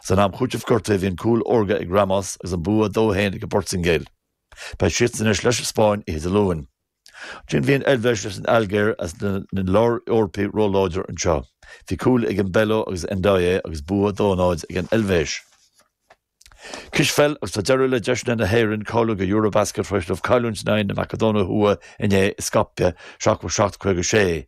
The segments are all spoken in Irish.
San am chúitimh gortaithe bhí an cúl órga ag Ramos agus an bua dó a haon ag an bPortaingéil. Beidh siadsan anois leis an Spáinn oíche Dé Luain. Ansin bhí an Eilvéis leis an Ailgéir is na Lár-Eorpaigh róláidir anseo. Bhí cúil ag Embolo agus Ndoye agus bua dó a náid ag an Eilvéis. Cispheil agus tá deireadh le deiseanna na hÉireann cáiliú do Eurobasket tar éis dóibh cailliúint in aghaidh na Macadóine Thuaidh inné i Skopje, 77-56.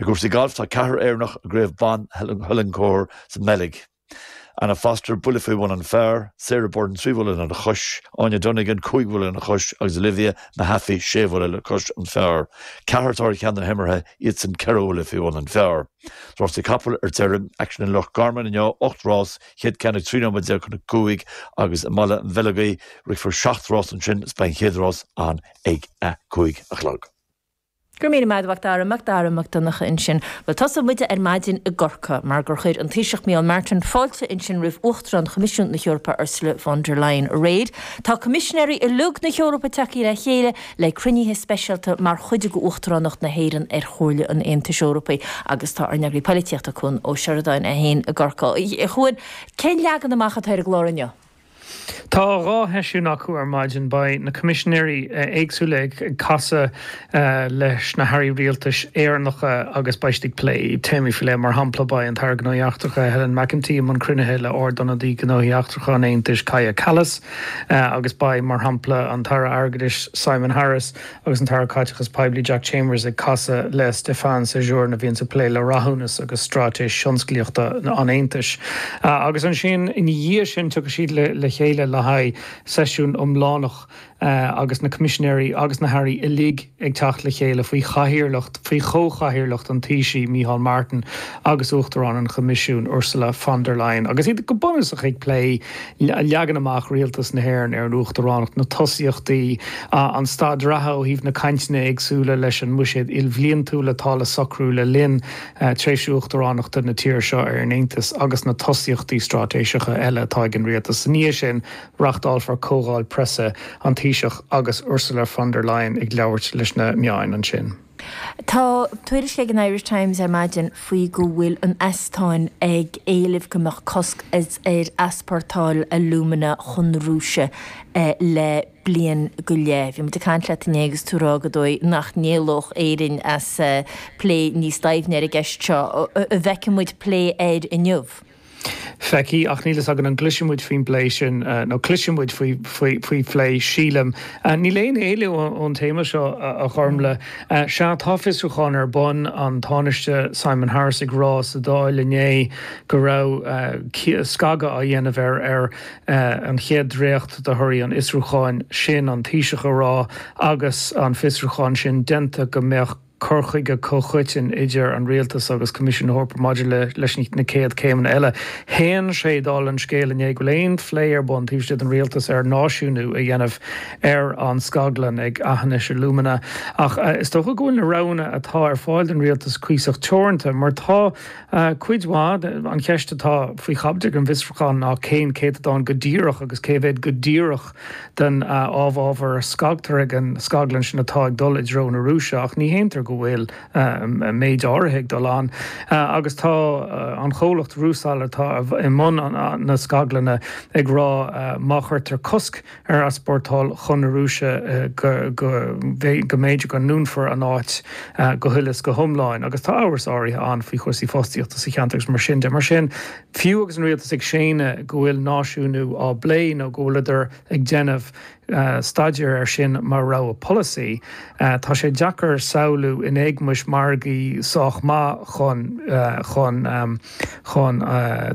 I gcúrsaí gailf, tá ceathrar Éireannach i gCraobh Ban Hulencourt sa mBeilg, Anna Foster, buille faoi bhun an phar, Sara Byrne, trí bhuille lena chois, Áine Donegan, cúig bhuille lena chois, agus Olivia Mehaffey, sé bhuille le cois an phar. Ceathrar atá ar cheann na himeartha, iadsan ceithre bhuille faoi bhun an phar. Rásaí capall ar deireadh. Aicsean i Loch Garman inniu, ocht rás, chéad ceann ag trí nóiméad déag chun a cúig agus i mBaile an Bheileogaigh, rithfear seacht rás ansin is beidh an chéad rás ann ag a cúig a chlog. Go raibh míle maith agat Macdara, Macdara Mac Donncha ansin. Bhuel, tosóidh muide ar maidin i gCorcaigh mar gur chuir an Taoiseach Micheál Martin fáilte ansin roimh Uachtarán Choimisiún na hEorpa Ursula von der Leyen aréir. Tá Coimisinéirí uilig na hEorpa tagtha le chéile le cruinnithe speisialta mar chuid d'Uachtaránacht na hÉireann ar Chomhairle an Aontais Eorpaigh agus tá ár n-eagraí polaitíochta Cuan Ó Seireadáin é féin i gCorcaigh. A Chuan, cén leagan amach atá ar an gclár inniu? Tá dhá sheisiún acu ar maidin. Beidh na Coimisinéirí éagsúla ag casadh leis na hAirí Rialtais Éireannacha agus beidh siad ag plé téamaí faoi leith. Mar shampla, beidh an tAire Gnóthaí Eachtracha, Helen McEntee, i mbun cruinnithe le Ard-ionadaí Gnóthaí Eachtracha an Aontais, Kaja Kallas, agus beidh, mar shampla, an tAire Airgeadais, Simon Harris, Agus an tAire Caiteachais Poiblí Jack Chambers ag casadh le Stéphane Séjourné, a bhíonn ag plé le rathúnas agus straitéis thionsclaíochta an Aontais, agus ansin ina dhiaidh sin tiocfaidh siad le chéile le haghaidh seisiún iomlánach agus na Coimisinéirí agus na hAirí uilig ag teacht le chéile faoi chathaoirleacht, faoi chomhchathaoirleacht an Taoisigh Micheál Martin agus Uachtarán an Choimisiúin Ursula von der Leyen agus iad go bunúsach ag plé. Leagan amach Rialtas na hÉireann ar an Uachtaránacht na tosaíochtaí, an staid reatha ó thaobh na cainteanna éagsúla leis an mbuiséad ilbhliantúil atá le socrú le linn tréimhse Uachtaránachta na tíre seo ar an Aontas agus na tosaíochtaí straitéiseacha eile atá ag an Rialtas. Is ina dhiaidh sin, reáchtálfar Comhdháil Preasa, an Taoiseach agus Ursula von der Leyen ag labhairt leis na meáin ansin. Tá tuairisc ag an Irish Times ar maidin faoi go bhfuil an Eastóin ag éileamh go mbeadh cosc ar easpórtáil alumina chun na Rúise le bliain go leith. Bhí muid ag caint leat inné agus tú ag rá gur dóigh nach n-éalódh Éirinn as plé níos doimhne ar an gceist seo. An bhfeicfidh muid plé air inniu? feicthe, ach níl a fhios agam an gcloisfidh muid faoin bplé sin nó cloisfidh muid faoi phlé, sílim. Níl aon éalú ón téama seo, a Ghormlaith. Sea, tá fiosrúchán ar bun, an Tánaiste Simon Harris ag rá sa Dáil inné go raibh scagadh á dhéanamh ar ar an chéad dréacht de thorthaí an fhiosrúcháin sin, an Taoiseach ag rá agus an fiosrúchán sin déanta go mbeadh cur chuige comhchoiteann idir an Rialtas agus Coimisiún na hEorpa maidir leis na céad chéimeanna eile. Shéan sé dála an scéil inné go bhfuil aon phlé ar bun taobh istigh den Rialtas ar náisiúnú a dhéanamh ar an scaglann ag Aughinish Alumina ach is dócha go bhfuil na roghanna atá ar fáil don Rialtas cuíosach teoranta mar tá cuid mhaith An cheist atá faoi chaibidil ag an bhfiosrúchán ná cén céatadán go díreach agus cé mhéad go díreach den amhábhar a scagtar ag an scaglann sin atá ag dul i dtreo na Rúise, ach ní shéantar go bhfuil méid áirithe ag dul ann agus tá an comhlacht Rusal atá i mbun na scaglainne ag rá má chuirtear cosc ar easpórtáil chun na Rúise go mb'fhéidir go ndúnfar an áit go huile is go hiomlán agus tá amhras áirithe ann faoi chúrsaí fostaíochta sa cheantar agus mar sin de. Mar sin. Fiú agus an rialtas ag séanadh go bhfuil náisiúnú á bplé nó go bhfuileadar ag déanamh staidéir air sin mar rogha polasaí, tá sé deacair samhlú, in éagmais margaí sách maith chun chun chun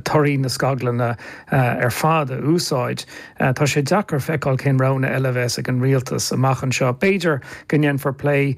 torthaí na scaglainne ar fad a úsáid, tá sé deacair feiceáil cén roghanna eile a bheas ag an rialtas amach anseo. B'fhéidir go ndéanfar plé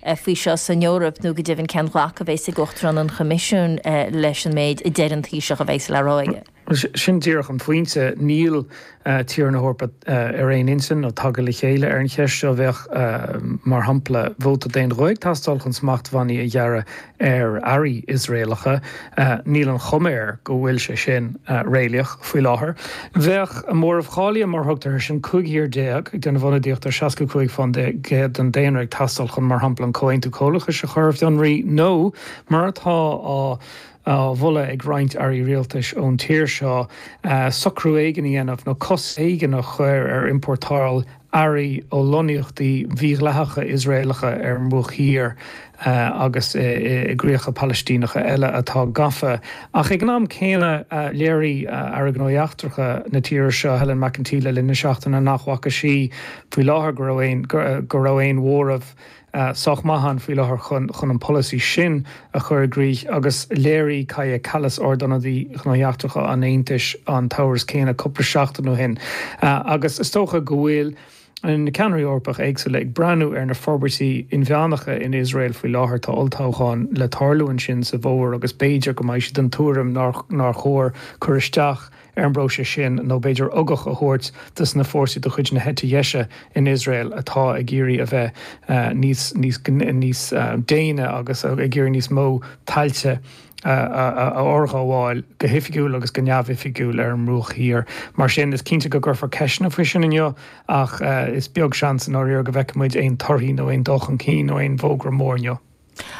faoi seo san Eoraip nó go deimhin cén ghlacadh a bheas ag Uachtarán an Choimisiúin leis an méid a deir an Taoiseach a bheas le rá aige. Sin díreach an pointe. Níl tíortha na hEorpa ar aon intinn nó tagtha le chéile ar an cheist seo. Bheadh, mar shampla, vóta d'aon ghuth ag teastáil chun smachtbhannaí a ghearradh ar earraí Iosraelacha, níl an chuma air go bhfuil sé sin réalaíoch faoi láthair. Bheadh móramh cháilithe, mar a thugtar air sin, 15 thír ag déanamh ionadaíocht ar 65 fán gcéad den daonra ag teastáil chun, mar shampla, an Comhaontú Comhlachais a chur ar fionraí nó, mar atá á mholadh ag roinnt airí rialtais ón tír seo, socrú éigin a dhéanamh nó cosc éigin a chur ar iompórtáil earraí ó lonnaíochtaí mhídhleathacha Iosraelacha ar an mBruach Thiar agus i gcríocha Palaistíneacha eile atá gafa. Ach ag an am céanna, léirigh Aire Gnóthaí Eachtracha na tíre seo, Helen McEntee, le linn na seachtaine nach bhfaca sí faoi láthair go go raibh aon mhóramh sách maith ann faoi láthair chun an polasaí sin a chur i gcrích agus léirigh Kaja Kallas, Ardionadaí Gnóthaí Eachtracha an Aontais, an t-amhras céanna cúpla seachtain ó shin. Agus is dócha go bhfuil na ceannairí Eorpacha éagsúla ag breathnú ar na forbairtí inmheánacha in Iosrael faoi láthair. Tá olltoghchán le tarlú ansin sa bhfómhar agus b'fhéidir go mbeidh siad den tuairim nár chóir cur isteach ar an bpróiseas sin, nó b'fhéidir ugach a thabhairt do na fórsaí de chuid na heite dheise in Iosrael atá ag iarraidh a bheith níos déine agus ag iarraidh níos mó tailte a fhorghabháil go hoifigiúil agus go neamhoifigiúil ar an mBruach Thiar. Mar sin, is cinnte go gcuirfear ceisteanna faoi sin inniu ach is beag seans i ndáiríre go bhfeicfidh muid aon torthaí nó aon dul chun cinn nó aon fhógra mór inniu.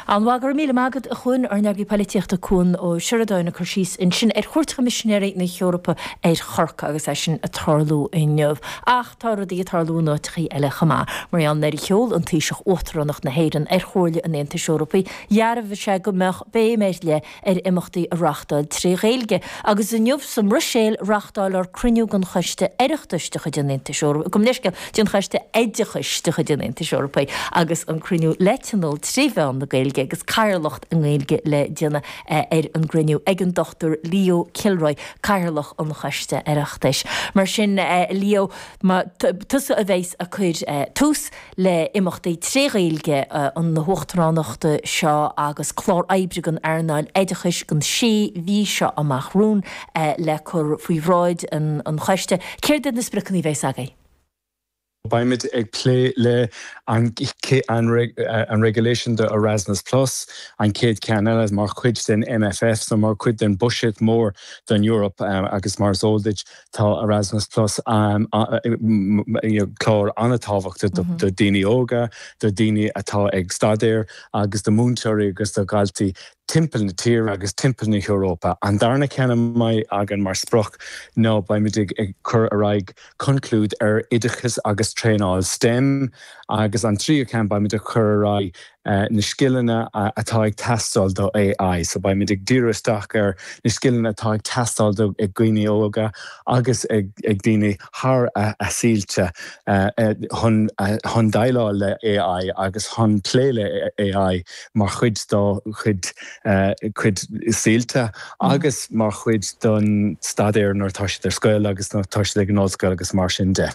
An-mhaith, go raibh míle maith agat a Chuan. Ár n-eagraí polaitíochta Cuan Ó Seireadáin ag cur síos ansin ar chuairt Choimisinéirí na hEorpa ar Chorcaigh agus é sin ag tarlú inniu. Ach tá rudaí ag tarlú in áiteachaí eile chomh maith. Mar nuair a sheol an Taoiseach Uachtaránacht na hÉireann ar Chomhairle an Aontais Eorpaigh dhearbhaigh sé go mbeadh béim ar leith ar imeachtaí a reáchtáil trí Ghaeilge agus inniu sa mBruiséil reáchtálfar cruinniú den Choiste Oireachtais de chuid an Aontais Eorpaigh, gabh mo leithscéal, den Choiste Oideachais de chuid an Aontais Eorpaigh agus an cruinniú le tionól trí mheán na Gaeilge agus cathaoirleacht i nGaeilge le déanamh ar an gcruinniú ag an Dr Leo Kilroy, Cathaoirleach an Choiste Oireachtais. Mar sin, Leo, más tusa a bheas ag cur tús. le imeachtaí trí Ghaeilge na hUachtaránachta seo agus clár oibre don earnáil oideachais don sé mhí seo amach. romhainn le cur faoi bhráid an Choiste. Céard iad na spriocanna a bheas agaibh? Beimid ag plé le an regulation do Erasmus Plus, an chéad cheann eile mar chuid den MFF so mar chuid den buiséad mór den Eoraip agus mar is eol duit Tá Erasmus Plus, clár an-tábhachtach do dhaoine óga, do dhaoine atá ag staidéar agus do mhúinteoirí agus do dhaltaí timpeall na tíre agus timpeall na hEorpa. An darna ceann a bheidh againn mar sprioc ná beimid ag cur ar aghaidh conclúid ar oideachas agus traenáil stem agus an tríú ceann beimid ag cur ar aghaidh na scileanna atá ag teastáil do AI. So beimid ag díriú isteach ar na scileanna atá ag teastáil ag daoine óga agus ag daoine thar a saolta chun déileáil le AI agus chun plé le AI mar chuid dá gcuid saolta agus mar chuid den staidéar nuair atá siad ar scoil agus nuair atá siad ag an ollscoil agus mar sin de.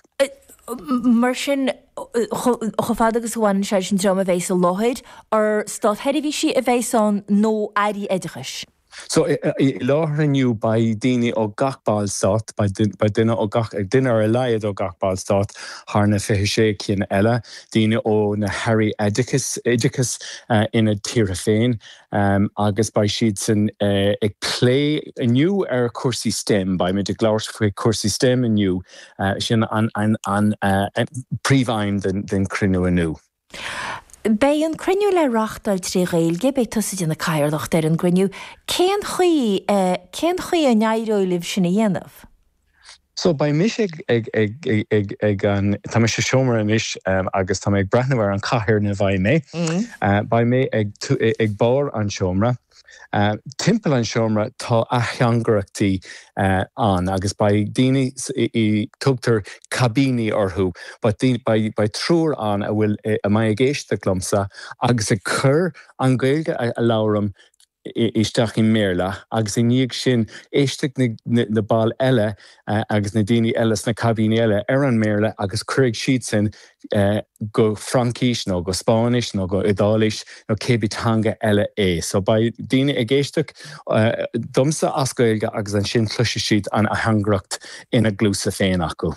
Mar sin, chomh fada agus a bhaineann sé leis an dream a bheas sa láthair, an státseirbhísigh a bheas ann nó Airí Oideachais? So, i láthair inniu beidh daoine ó gach Ballstát, beidh duine ó gach, duine ar a laghad ó gach Ballstát thar na 26 cinn eile, daoine ó na hAirí Oideachais ina dtíortha féin agus beidh siadsan ag plé inniu ar chúrsaí STEM, beidh muid ag labhairt faoi chúrsaí STEM inniu. Sin an príomhaidhm den chruinniú inniu. Beidh an cruinniú le reáchtáil trí Ghaeilge. Beidh tusa ag déanamh cathaoirleacht ar an gcruinniú. Cén chaoi, cén chaoi a n-éireoidh libh sin a dhéanamh? So, beidh mise ag, ag, ag, ag, ag an, tá mé sa seomra anois agus tá mé ag breathnú ar an chathaoir ina mbeidh mé. Beidh mé ag, ag barr an tseomra. Timpeall an seomra tá ateangaireachtaí ann agus beidh daoine, tugtar caibíní orthu, beidh triúr ann a mbeidh ag éisteacht liomsa agus ag cur an Ghaeilge a labhraim isteach i mBéarla agus i ndiaidh sin éistfidh na baill eile agus na daoine eile sna caibíní eile ar an mBéarla agus cuirfidh siadsan go Fraincis nó go Spáinnis nó go Iodáilis nó cibé teanga eile é. So beidh daoine ag éisteacht domsa as Gaeilge agus ansin cloisfidh siad an ateangaireacht ina gcluasa féin acu.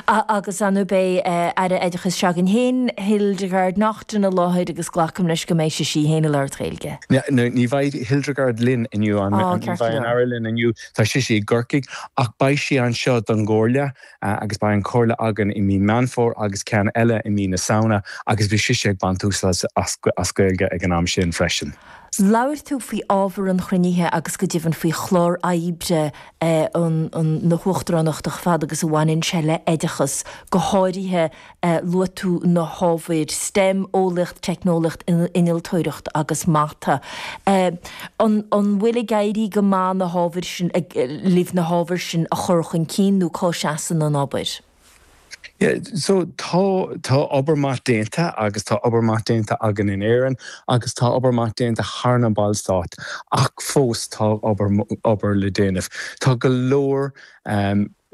Agus an mbeidh Aire Oideachais s'againn féin, Hildegarde Naughton, i láthair agus glacaim leis go mbeidh sí féin ag labhairt Gaeilge? Ní bheidh Hildegarde linn inniu, ní bheidh an Aire linn inniu. Tá sise i gCorcaigh ach beidh sí anseo don gComhairle agus beidh an Chomhairle againn i mí Meán Fómhair agus ceann eile i mí na Samhna agus beidh sise ag baint úsáid as Gaeilge ag an am sin freisin. Labhair tú faoi ábhar an chruinnithe agus go deimhin faoi chlár oibre na hUachtaránachta chomh fada agus a bhaineann sé le hoideachas, go háirithe Luaigh tú na hábhair STEM, Eolaíocht, Teicneolaíocht, Innealtóireacht agus Mata. An bhfuil ag éirí go maith na hábhair sin, libh na hábhair sin a chur chun cinn nó cá seasann an obair? So tá, tá obair maith déanta agus tá obair maith déanta againn in Éirinn agus tá obair maith déanta thar na Ballstáit ach fós tá obair, obair le déanamh. Tá go leor.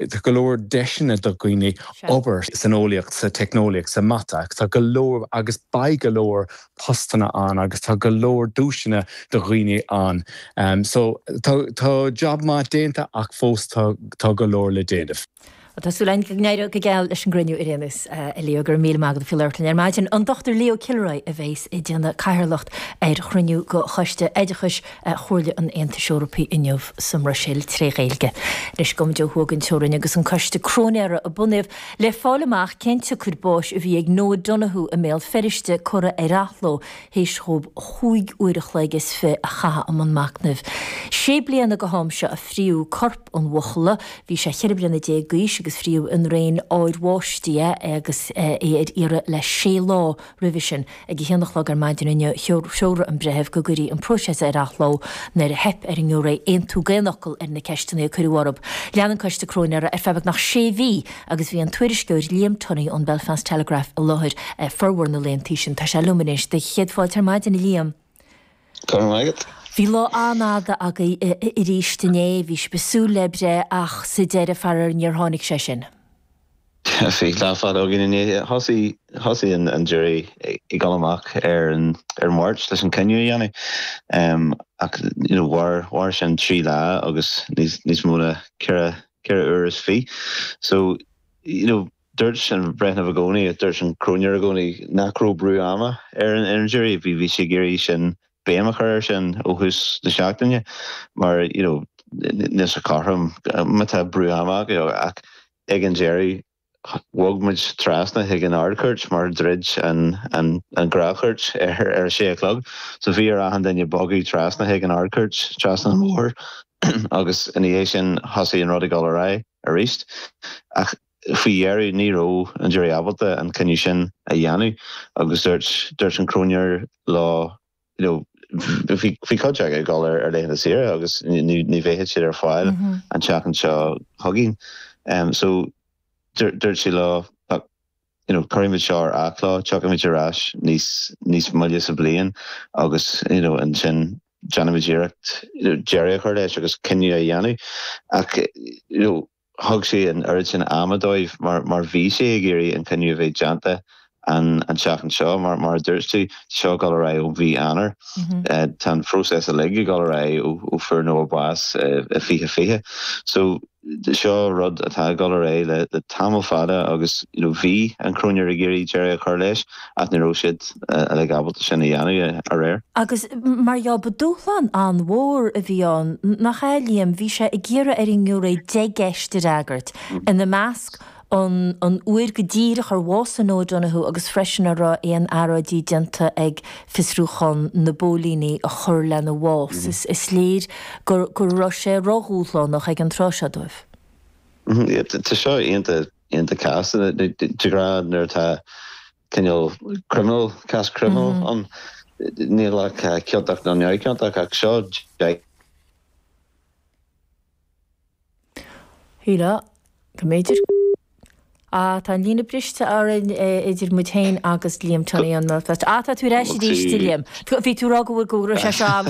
Tá go leor deiseanna do dhaoine obair san eolaíocht, sa teicneolaíocht, sa mata, tá go leor agus beidh go leor postanna ann agus tá go leor deiseanna do dhaoine ann. So tá jab maith déanta ach fós tá go leor le déanamh. Bhuel tá súil againn go n-éireoidh go geal leis an gcruinniú inniu agus a Leo. Go raibh míle maith agat as labhairt linn ar maidin. An Dr Leo Kilroy a bheas ag déanamh cathaoirleacht ar chruinniú de Choiste Oideachais, Chomhairle an Aontais Eorpaigh inniu sa mBruiséil tré Ghaeilge. Anois gabhaimid ó thuaidh den teorainn agus an coiste cróinéara a bunaíodh le fáil amach cén tsiocair báis a bhí ag Noah Donohoe i mBéal Feiriste curtha ar athló théis dhóib chúig uair a chloig is fiche a chaitheamh i mbun machnaimh. Sé bliana go ham seo a fríodh corp an bhuachalla. Bhí sé cheithre bliana déag d'aois agus fríodh i ndraein ardbháistí é agus é ar iarraidh le sé lá. roimhe sin. Ag a haon a chlog ar maidin inniu, threoraigh an Breitheamh go gcuirfí an próiseas ar athló nuair a theip ar an ngiúiré aontú d'aon fhocal ar na ceisteanna a cuireadh orthu. Lean an coiste cróinéara ar feadh beagnach sé mhí agus bhí an tuairisceoir Liam Tunney ón Belfast Telegraph i láthair formhór na laethanta sin. Tá sé liom anois. Do chéad fáilte ar maidin, a Liam. Go raibh maith agat. Bhí lá an-fhada agaibh arís inné. Bhí sibh ag súil le breith ach sa deireadh, faraor, níor tháinig sé sin. Bhí lá fada againn inné thosaigh, thosaigh an an jury ag dul amach ar an ar an Mháirt leis an cinneadh a dhéanamh ehm ach you know mhair mhair sin trí lá agus níos níos mó na ceithre ceithre uair is fiche so you know dúirt an breitheamh i gcónaí, dúirt an cróinéir i gcónaí nach raibh brú ama ar an ar an jury, bhí bhí sí ag iarraidh sin béim a chur air sin ó thús na seachtaine mar you know níl sé cothrom má tá brú ama orthu ach ag an deireadh bhog muid trasna chuig an Ard-Chúirt mar dhruid an ghnáthchúirt ar a sé a chlog so bhí ar achan duine bogadh trasna chuig an Ard-Chúirt trasna an bhóthair agus ina dhiaidh sin thosaigh an rud ag dul ar aghaidh aríst ach Faoi dheireadh, ní raibh an jury ábalta an cinneadh sin a dhéanamh agus dúirt dúirt an cróinéir leo you know bhí bhí cuid acu ag dul ar ar laethanta saoire agus ní ní bheadh siad ar fáil an tseachtain seo chugainn em so dúirt dúirt sí leo ach you know cuirfimid seo ar athlá tiocfaimid ar ais níos níos moille sa bhliain agus you know ansin déanfaimid iarracht you know deireadh a chur leis agus cinneadh a dhéanamh ach you know thug sí an oiread sin ama dóibh mar mar bhí sí ag iarraidh an cinneadh a bheith déanta an an tseachtain seo mar mar a dúirt tú tá seo ag dul ar aghaidh ó mhí Eanáir tá an próiseas uilig ag dul ar aghaidh ó ó fuair Noah bás i fiche fiche so seo rud atá ag dul ar aghaidh le tamall fada agus you know bhí an cróinéir ag iarraidh deireadh a chur leis ach ní raibh siad uilig ábalta sin a dhéanamh aréir. Agus mar gheall, ba dúshlán an-mhór a bhí ann, nach ea, Liam? Bhí sé ag iarraidh ar an ngiúiré deich gceist a fhreagairt, ina measc, an an uair go díreach ar bhásaigh Noah Donohoe agus freisin an raibh aon earráidí déanta ag fiosrúchán na bpóilíní a chuir lena bhás. Is léir go raibh sé ródhúshlánach ag an tráth seo dóibh. Tá seo iontach. cásanna de ghnáth nuair atá cineál criminal, cás criminal ann, níl ach ciontach nó neamhciontach ach seo. Sílim go mb'fhéidir. Ah, tá an líne briste orainn idir muid féin agus Liam Tunney, ah, tá tú ar ais arís, Liam. Bhí tú rá go bhfuil, go raibh sé seo am.